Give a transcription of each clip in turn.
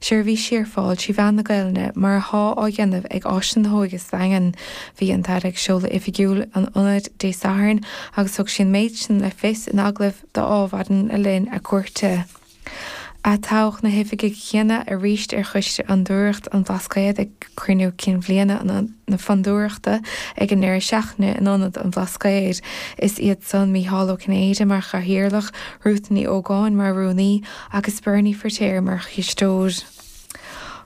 seirbhísí ar fáil trí mheán na Gaelainne mar athá á dhéanamh ag Áiseanna na hÓige sa Daingean. Bhí an tAire ag seoladh oifigiúil an ionaid Dé Sathairn agus thug sí an méid sin le fios in agallamh d'Adhmhaidin le linn a cuairte. Atoghadh na hoifigigh chéanna aríst ar Choiste Fhondúireacht an Bhlascaoid ag Cruinniú Cinn Bhliana na Fondúireachta ag an ndeireadh seachtaine in Ionad an Bhlascaoid. Is iad san, Mícheál Ó Cinnéide mar Chathaoirleach, Ruth Ní Ógáin mar Rúnaí, agus Bernie Firtéar mar chisteoir.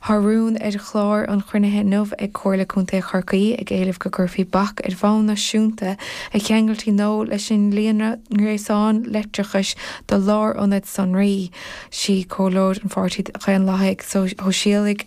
Tá rún ar chlár an chruinnithe inniu ag Comhairle Contae Chorcaí ag éileamh go gcuirfí bac ar bhonn náisiúnta ar cheangailtí nua leis an líonra ngréasán leictreachais do lárionaid sonraí. Sí comhairleoir an Pháirtí Dhaonlathaigh Shóisialaigh,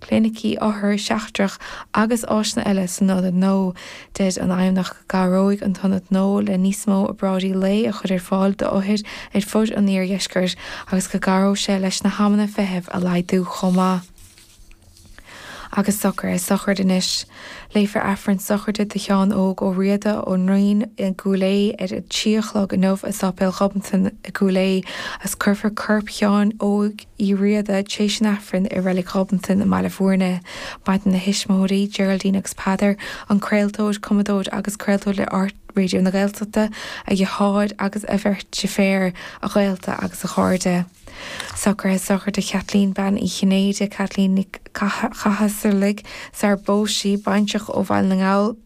clinicí othair seachtrach agus áiseanna eile san ionad nua. Deir an Fheidhmeannacht go gcabhróidh an t-ionad nua le níos mó obráidí lae a chur ar fáil d'othair ar fud an Iardheiscirt agus go gcabhróidh sé leis na hamanna feithimh a laghdú chomh maith. Agus socraithe sochraide anois, léifear Aifreann sochraide do Sheán Óg Ó Riada ón nDraighean i gCúil Aodha ar a trí a chlog inniu i Sáipéal Ghobnatan i gCúil Aodha agus cuirfear corp Sheáin Óig Uí Riada, tar éis an Aifrinn i Reilig Ghobnatan i mBaile Bhuirne. Maireann a thuismitheoirí, Geraldine agus Peadar, an craoltóir, cumadóir agus craoltóir le RTÉ Raidió na Gaeltachta, a dheartháir agus a bheirt deirféar, a ghaolta agus a chairde. Socraithe sochraide do Chaitlín Bean Uí Chinnéide, Caitlín Ní Chathasaigh, sara bpós sí baintreach ó Bhaile na nGall,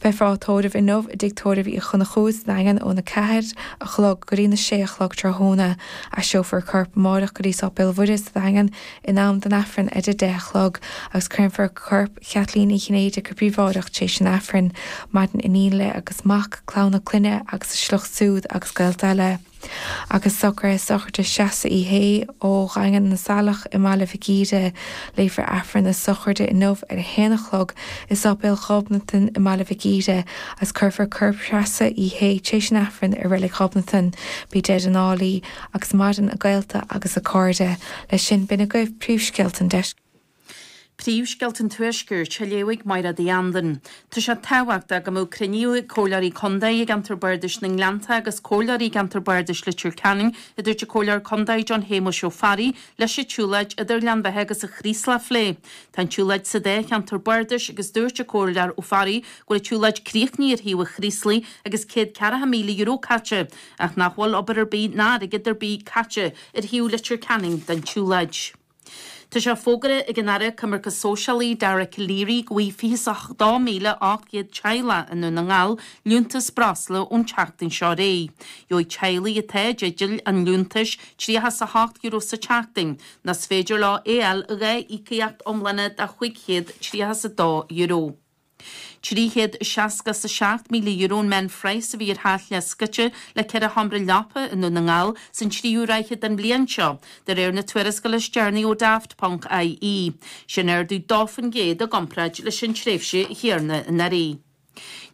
Beifear á tórramh inniu i dtigh tórraimh Uí Chonchúir sa nDaingean ón 4 a chlog go dtí na 6 a chlog tráthnóna. Aistreofar a corp amáireach go dtí Sáipéal Mhuire sa Daingean in am don Aifreann ar a 10 a chlog agus créamfar corp Chaitlín Uí Chinnéide go príobháideach tar éis an Aifrinn. Maireann iníon léi agus mac, clann a clainne agus a sliocht súd agus gaolta eile. Agus socraithe sochraide Threasa Uí Shé ó Dhaingean na Saileach i mBaile Mhic Íre. Léifear Aifreann na sochraide inniu ar a haon a chlog i Sáipéal Ghobnatan i mBaile Mhic Íre agus cuirfear corp Threasa Uí Shé tréis an Aifrinn i Reilig Ghobnatan. Bí dead and álaí agus maireann a gaolta agus a cairde. Leis sin, b'in agaibh príomhscéalta an. Príomhscéalta an Tuaiscirt á léamh ag Maighréad Uí Andain. Tá sé tábhachtach go mbeadh cruinniú ag Comhairleoirí Contae i gceantar Bardais na nGleannta agus Comhairleoirí i gceantar Bardais Leitir Ceanainn, a dúirt an Comhairleoir Contae John Shéamais Ó Fearraigh, leis an tsiúlóid idir Gleann Bheatha agus an Chraoslach a phlé. Tá an tsiúlóid sa dá cheantar bardais agus dúirt an Comhairleoir Ó Fearraigh go bhfuil an tsiúlóid críochnaithe ar thaobh an Chraoslaigh agus céad ceathracha míle euro caite ach nach bhfuil obair ar bith ná airgead ar bith caite ar thaobh Leitir Ceanainn den tsiúlóid. Tá sé fógartha ag an Aire Coimirce Sóisialaí, Dara Calleary, go bhfuighfidh 28,800 teaghlach i nDún na nGall liúntas breosla ón tseachtain seo ar aghaidh. Gheobhaidh teaghlaigh atá i dteideal an liúntais €38 sa tseachtain nó is féidir leo é fháil i dhá íocaíocht iomlána de €532. €367,000 an meánphraghas a bhí ar theach leathscoite le ceithre sheomra leapa i nDún na nGall san tríú ráithe den bhliain seo, de réir na tuarascála is deireanaí ó Daft, ponc, IE. Sin ardú dó fán gcéad i gcomparáid leis an tréimhse chéanna anuraidh.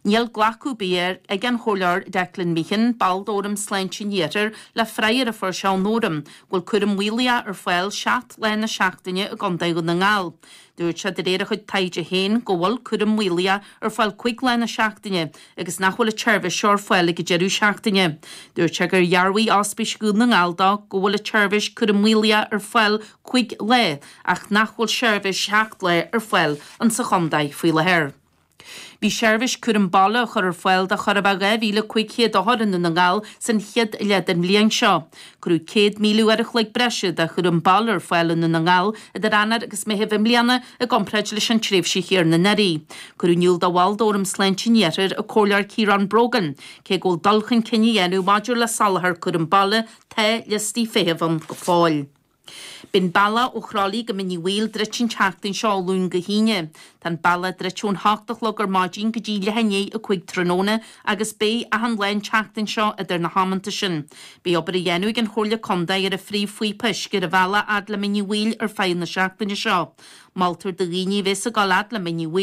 Níl glacadh ar bith ag an Chomhairleoir Declan Meehan, ball d'Fhóram Sláinte an Iarthair, le freagra a fuair sé ón Fhóram, go bhfuil cúram maolaitheach ar fáil seacht lá na seachtaine i gContae Dhún na nGall. Dúirt sé, de réir a chuid taighde féin, go bhfuil cúram maolaitheach ar fáil cúig lá na seachtaine agus nach bhfuil an tseirbhís seo ar fáil ag an deireadh seachtaine. Dúirt sé gur dhearbhaigh Ospís Dhún na nGall dó go bhfuil an tseirbhís cúram maolaitheach ar fáil cúig lá ach nach bhfuil seirbhís seacht lá ar fáil insa chontae faoi láthair. Bhí seirbhís cúram baile á chur ar fáil do chóir a bheith 2,500 othar i nDún na nGall san chéad leath den bhliain seo. Cuireadh 100,000 uair a chloig breise de chúram baile ar fáil i nDún na nGall idir Eanáir agus Meitheamh i mbliana i gcomparáid leis an tréimhse chéanna anuraidh. Cuireadh in iúl do bhall d'Fhóram Sláinte an Iarthair, an Comhairleoir Ciarán Brogan, cé go bhfuil dul chun cinn á dhéanamh maidir le soláthar cúram baile, tá liostaí feithimh ann go fóill. Beidh an bealach ó Chroithlí go Mín Uí Bhaoill druidte an tseachtain seo ó Luan go hAoine. Tá an bealach druidte ón hocht a chlog ar maidin go dtí leath i ndiaidh a cúig tráthnóna agus beidh achan lá an tseachtain seo idir na hamanta sin. Beidh obair á dhéanamh ag an Chomhairle Contae ar an phríomhphíopa uisce ar an bhealach fhad le Mín Uí Bhaoill ar feadh na seachtaine seo. Moltar do dhaoine a bhéas ag gabháil fhad le Mín Uí